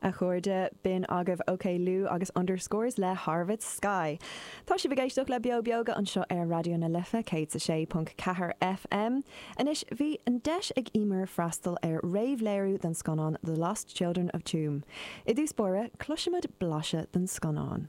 A chairde, b'in agaibh Oklou agus underscores le Harvest Sky. Tá sibh ag éisteacht le Beo Beoga anseo ar Raidió na Life 106.4 FM. Anois, bhí an deis ag Emer freastal ar réamhléiriú den scannán The Lost Children of Tuam. I dtús báire, cloisfimid blaiseadh den scannán.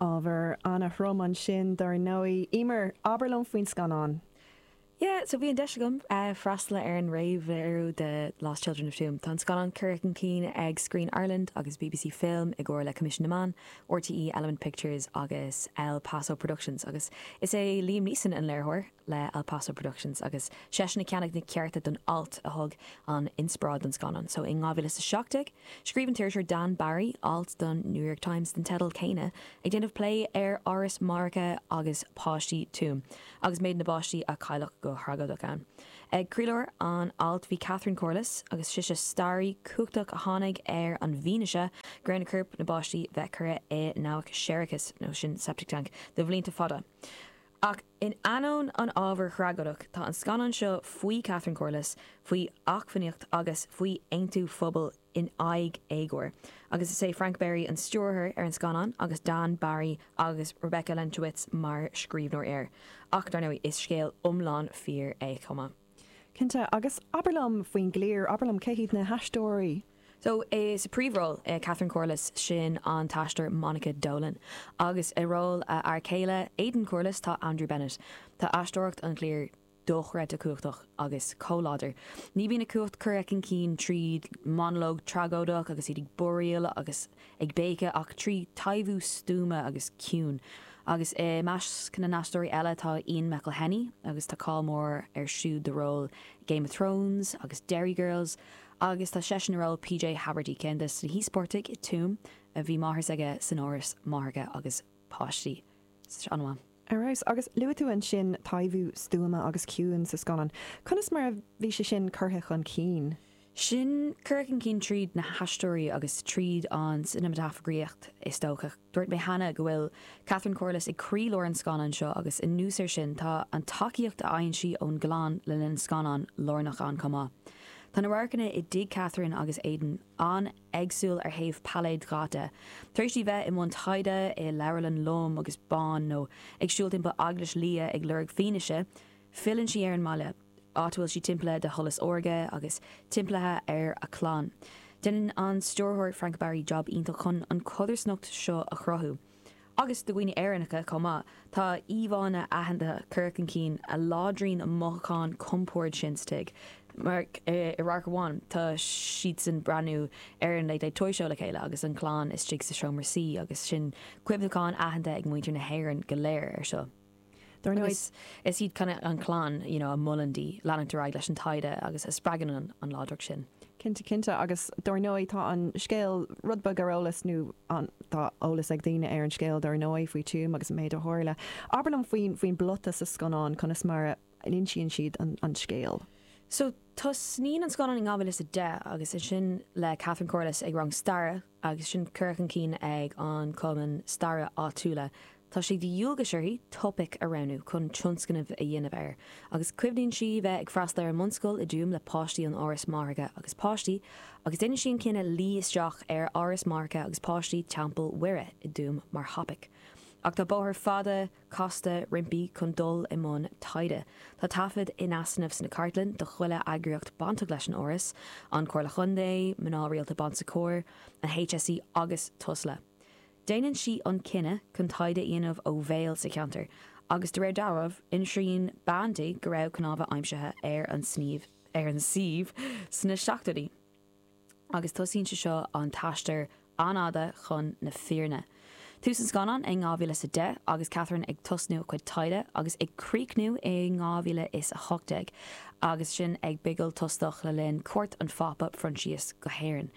Ábhar ana-throm ansin dar ndóigh. Emer, abair liom faoin scannán. Yeah, so bhí an deis agam freastal ar an réamhléiriú de Lost Children of Tuam. Tá an scannán curtha chun cinn ag Screen Ireland agus bbc Film i gcomhar le Coimisiún na Meán, rte, Element Pictures agus El Paso Productions agus is é Liam Neeson an léiritheoir. le El Paso Productions agus seisean a cheannaigh na cearta don alt a thug an inspioráid don scannán so in 2017 scríobh an t-iriseoir Dan Barry alt don New York Times den teideal céanna ag déanamh plé ar áras máithreacha agus páistí Tuam agus méid na bpáistí a cailleadh go thragóideach ann. Ag croílár an ailt bhí Catherine Corless agus sise staraí cumhachtach a tháinig ar an bhfianaise go raibh na coirp na bpáistí bheith curtha i ndabhach séarachais nó sin septic tank de bhlianta fada ach In ainneoin an ábhair thragóideach, tá an scannán seo faoi Catherine Corless, faoi acmhainneacht agus faoi aontú phobail in aghaidh éagóir. Agus is é Frank Berry an stiúrthóir ar an scannán agus Dan Barry agus Rebecca Lenkiewicz mar scríbhneoirí air. Ach dar ndóigh, is scéal iomlán fíor é chomh maith. Cinnte. Agus abair liom faoin gcliar, abair liom cé hiad na haisteoirí? So, sa príomhról, Catherine Corless, sin an t-aisteoir Monica Dolan. Agus i ról a fhear céile, Aidan Corless, tá Andrew Bennett. Tá aisteoireacht an chliar dochreidte cumhachtach agus chomh láidir. Ní bhíonn a cumhacht curtha chun cinn trí monologue tragóideach agus iad ag búiríl agus ag béiceadh ach trí taibhiú stuama agus ciúin. Agus i measc na n-aisteoirí eile tá Ian McElhinney agus tá cáil mór air siúd do ról i Game of Thrones agus Derry Girls agus tá seisean i ról PJ Haverty, ceann de na híospartaigh i Tuam a bhí máthair s'aige san áras máithreacha agus páistí. Ar fheabhas. Agus luaigh tú ansin taibhiú stuama agus ciúin sa scannán. Conas mar a bhí sé sin curtha chun cinn? Sin curtha chun cinn tríd na haisteoirí agus tríd an cineamatagrafaíocht is dócha. Dúirt mé cheana go bhfuil Catherine Corless ag croí lár an scannáin seo agus anuas ar sin tá an tacaíocht a fhaigheann sí ón gclann le linn an scannáin lárnach ann chomh maith. Tá na radharcanna i dtigh Catherine agus Aidan an- éagsúil ar thaobh pailéad datha. Tar éis di bheith i mbun taighde i leabharlann lom agus bán nó ag siúl timpeall eaglais liath ag lorg fianaise, filleann sí ar an mbaile, áit a bhfuil sí timpeallaithe de sholas órga agus timpeallaithe ar a clann. Déanann an stiúrthóir Frank Berry jab iontach chun an chodarsnacht seo a chruthú. agus do dhaoine Éireannacha chomh maith, tá íomhánna aitheanta curtha chun cinn a láidríonn an mothúchán compoird sin sa tigh. Mar, i radharc amháin, tá siad ag breathnú ar an Late Late Toy Show le chéile agus an chlann istigh sa seomra suí agus sin cuimhneachán aitheanta ag muintir na hÉireann go léir ar seo. Dar ndóigh, is iad an chlann you know a mholann di leanúint ar aghaidh leis an taighde agus a spreagann an láidreacht sin. Cinnte, cinnte. Agus dar ndóigh tá an scéal rud beag ar eolas nó tá eolas ag daoine ar an scéal dar ndóigh faoi Tuam agus an méid a tharla. Abair liom faoin bplota sa scannán, conas mar a insíonn siad an scéal. So, Tosnaíonn an scannán in 2010 agus ansin le Catherine Corless ag rang staire agus sin curtha chun cinn ag an cumann staire áitiúla. Tá sé de dhualgas uirthi topaic a roghnú chun tionscnamh a dhéanamh air agus cuimhníonn sí bheith ag freastal ar an mbunscoil i dTuaim le páistí ón Áras Máithreacha agus Páistí agus déanann sí an cinneadh luí isteach ar Áras Máithreacha agus Páistí Teampall Mhuire i dTuaim mar thopaic ach tá bóthar fada casta roimpi chun dul i mbun taighde. Tá taifead in easnamh sna cartlanna de chuile eagraíocht bainteach leis an bhforas, An Chomhairle Chontae, Mná Rialta Bon Secours, an HSE agus Tusla. Déanann sí an cinneadh chun taighde a dhéanamh ó bhéal sa cheantar agus de réir dealraimh, insíonn bean di go raibh cnámha aimsithe ar an suíomh sna seachtóidí. agus tosaíonn sé seo an t-aistear an-fhada chun na fírinne. Tús an scannáin i ndhá mhíle is a deich agus Catherine ag tosnú a cuid taighde agus ag críochnú i ndhá mhíle is a hocht déag agus sinn ag bigil tostach le linn cuairt an Phápa Phroinsias go hÉirinn.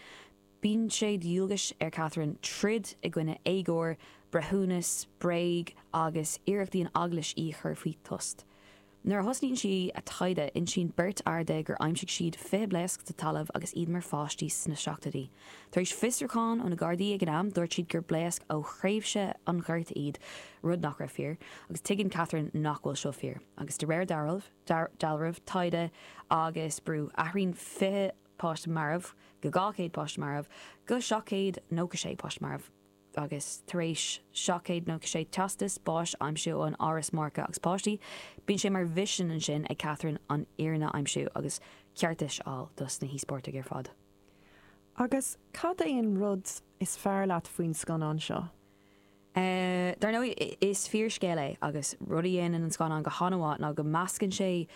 Bíonn sé de dhualgas ar Catherine troid i gcoinne éagóir, breithiúnas, bréag agus iarrachtaí an Eaglais í a chur faoi thost. Nuair a thosaíonn sí a taighde insíonn beirt fhear di gur aimsigh siad 20 blaosc sa talamh agus iad mar pháistí sna seachtóidí. Tar éis fiosrúcháin ó na Gardaí ag an am dúirt siad gur blaosc ó thréimhse an Ghorta iad, rud nach raibh fíor, agus tuigeann Catherine nach bhfuil seo fíor. Agus de réir dealraimh, taighde agus brú, athraíonn 20 páiste marbh go 200 páiste marbh go 796 páiste marbh. agus tar éis 796 teastas báis aimsiú ón Áras Máithreacha agus Páistí, bíonn sé mar mhisean ansin ag Catherine an fhírinne a aimsiú agus ceartas a fháil dos na híospartaigh ar fad. Agus cad é an rud is fearr leat faoin scannán seo? Dar ndóigh, is fíorscéal é agus rud a dhéanann an scannán go han-mhaith ná go meascann sé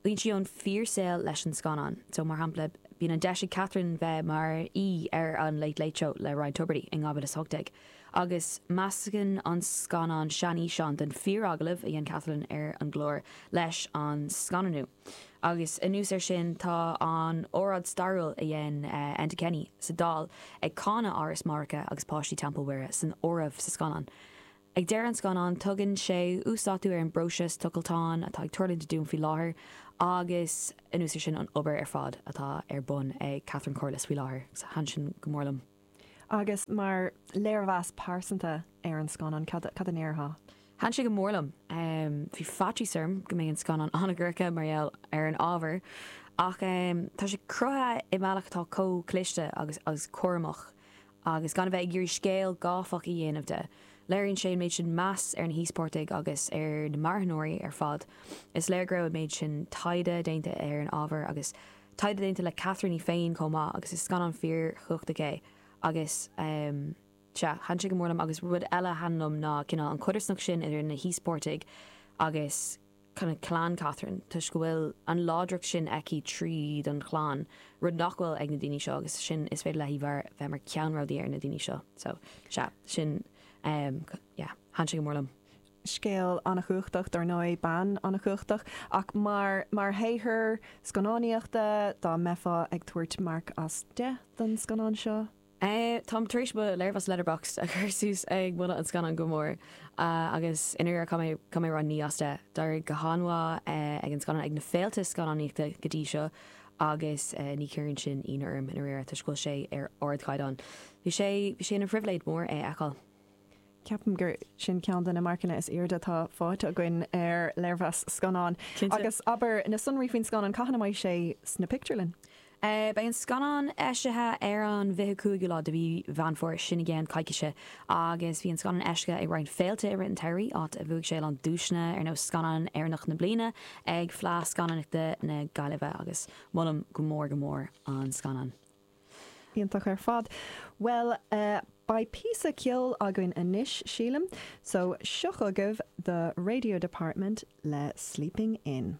Bíonn sí ón fíor saol leis an scannán. So mar shampla bíonn an deis ag Catherine bheith mar aoi ar an Late Late Show le Ryan Tubridy i 2018 agus meascann an scannán seanfhíseán den fíor agallamh a dhein Catherine ar an gclár leis an scannánú. Agus anuas ar sin tá an óráid stairiúil a dhein Enda Kenny sa Dáil ag cáineadh Áras Máithreacha agus páistí Teampall Mhuire san áireamh sa scannán. Ag deireadh an scannáin tugann sé uasdátú ar an bpróiseas tochaltáin atá ag tarlúint i dTuaim faoi láthair agus anuas ar sin an obair ar fad atá ar bun ag Catherine Corless faoi láthair. Thaithin sin go mór liom. Agus mar léirmheas pearsanta ar an scannán cad cad a ndéarfá? Thaithin sé go mór liom. Bhí faitíos orm go mbeidh an scannán an-dhorcha mar gheall ar an ábhar ach tá sé cruthaithe i mbealach atá chomh cliste agus cúramach agus gan a bheith ag iarraidh scéal gáifeach a dhéanamh de. Léiríonn sé an méid sin meas ar na híospartaigh agus ar na marthanóirí ar fad. Is léir go raibh an méid sin taighde déanta ar an ábhar agus taighde déanta le Catherine í féin chomh maith agus is scannán fíor chumhachtach é agus sea, thaitin sé go mór liom agus rud eile a thaitin liom ná cineál an codarsnacht sin idir na híospartaigh agus cineál clann Catherine toisc go bhfuil an láidreacht sin aici tríd an chlann, rud nach bhfuil ag na daoine seo agus sin is féidir léithi bheith mar ceannródaí ar na daoine seo. So, sea, sin, em, yeah, thaitin sé go mór liom. Scéal an-chumhachtach, dar ndóigh, bean an-chumhachtach ach mar, mar shaothar scannánaíochta, dá mbeifeá ag tabhairt marc as deich don scannán seo? Táim tar éis mo léirmheas Letterboxd a chur suas ag moladh an scannáin go mór agus i ndáiríre tá mé tá mé ag rá naoi as deich. D'éirigh go han-mhaith ag an scannán ag na féilte scannánaíochta go dtí seo agus ní chuireann sin ionadh orm i ndáiríre toisc go bhfuil sé ar ardchaighdeán. Bhí sé bhí sé ina phribhléid mór é a fheiceáil. Ceapaim gur sin ceann de na marcanna is aoirde atá faighte againn ar léirmheas scannáin. Agus abair, na sonraí faoin scannán, cathain a mbeidh sé sna pictiúrlanna? Beidh an scannán eisithe ar an bhfiche cúigiú lá de mhí Mheán Fómhair, sin i gceann coicíse, agus bhí an scannán eisithe ag roinnt féilte i rith an tsamhraidh, áit a bhuaigh sé a lán duaiseanna, ar nós Scannán Éireannach na Bliana ag Fleadh Scannánaíochta na Gaillimhe, agus molaim go mór go mór an scannán. Iontach ar fad. Bhuel eh, beidh píosa ceoil againn anois, sílim, so seo chugaibh The Radio Department le Sleeping In.